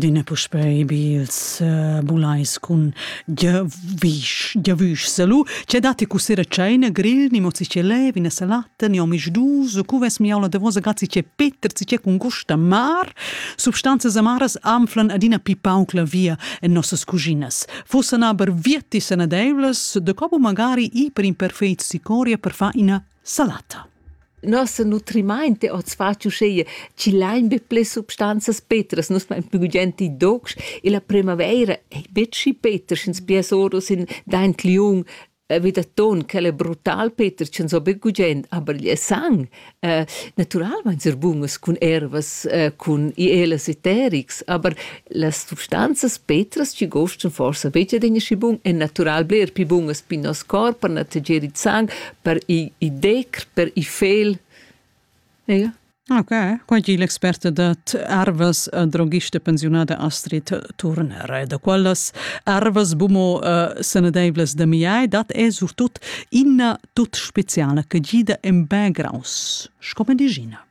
adina puspei bi ils uh, bulais cun giavüsch giavüsch salu che datti cu sera ceina grill ni mozi ce lev ina salata ni omisch dus cu ves miaula davosa grazzi ce peter ci ce cun gusta mar substanzas amaras anflan adina pi pauc la via en nossas cuginas fussan aber vietti sanadeivlas de copo magari i per imperfeit sicoria per fa ina salata. Nossa nutrimaint è oz fatg uschea chi lain be ples substanzas petras, nus main plü gugent i docs e la primavaira è betg schi peter, sch'ins pias oros in daint liung eh, vi da ton, quel è brutal peter, ch'ins ho be gugent, aber il sang eh, naturalmain ser bunas cun ervas, eh, cun ielas eterics, aber Las substanzas petras chi gostan forsa be adina schi bun è natural bler pli bun as pin nos corp per nategier il sang, per i, i decr, per i fel. Ega? Ok, quai è l'experta dat ervas eh, drogista pensiunada Astrid Turner. Da quellas ervas bumo uh, sanadeivlas da miai dat è surtut ina tut speciala che gida en backgrounds, sco medicina.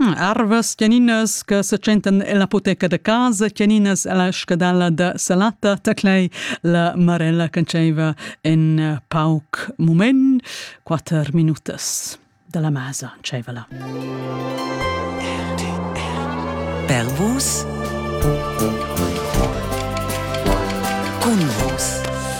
Arvas tgeninas che se tschentan ella apoteca da casa, tgeninas ella scadala da salata, taclei la Marella canzeiva in pauc mument, quatter minutas dalla masa dscheiva la. Pervus. Cun vus.